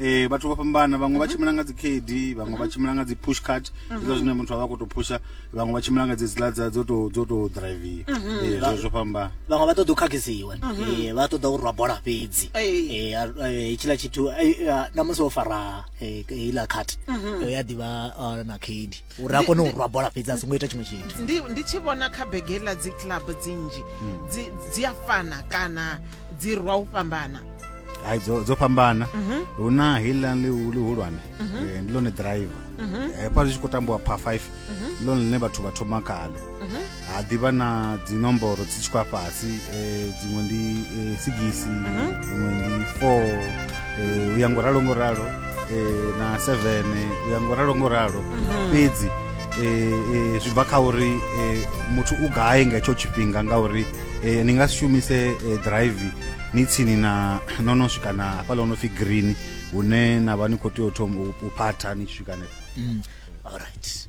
Eh vhathu vho fhambana vhaṅwe vha tshimbila nga dzi khedi vhaṅwe vha tshimbila nga dzi push cart zwa zwine muthu avha khoto phusha vhaṅwe vha tshimbila nga dzi zila dza dzo to dzo to drive eh zwo zwo fhambana vhaṅwe vha ṱoḓa u khakhisiwa eh vha ṱoḓa u rwa bola fhedzi eh hetshiḽa tshithu na musi wo fara heiḽa cart ya ḓivha na khedi uri a kone u rwa bola fhedzi a songo ita tshiṅwe tshithu ndi ndi tshi vhona kha bege ḽa dzi club dzinzhi hmm. dzi dzi a fana kana dzi rwa u fhambana hai dzo dzo fhambana mhm. hu na heiḽa ḽi hulwane mhm. eh, ndi ḽone driver mhm. eh, hafha zwi tshi khou tambiwa pha 5 ndi ḽone ḽine vhathu vha thoma khalo ha ḓivha na dzinomboro dzi tshi khou a fhasi um dziṅwe ndi um sigisi mhm. dziṅwe ndi four um u ya ngo ralo ngo ralo um na seven u ya ngo ralo ngo ralo mhm. fhedzi um zwi bva kha uri um muthu u gai nga hetsho tshifhinga ngauri um ni nga si shumise drive ni tsini na no no swika na hafhaḽa o no pfhi green hune na vha ni khou tea u thoma u phatha ni tshi swika nefho mm. all right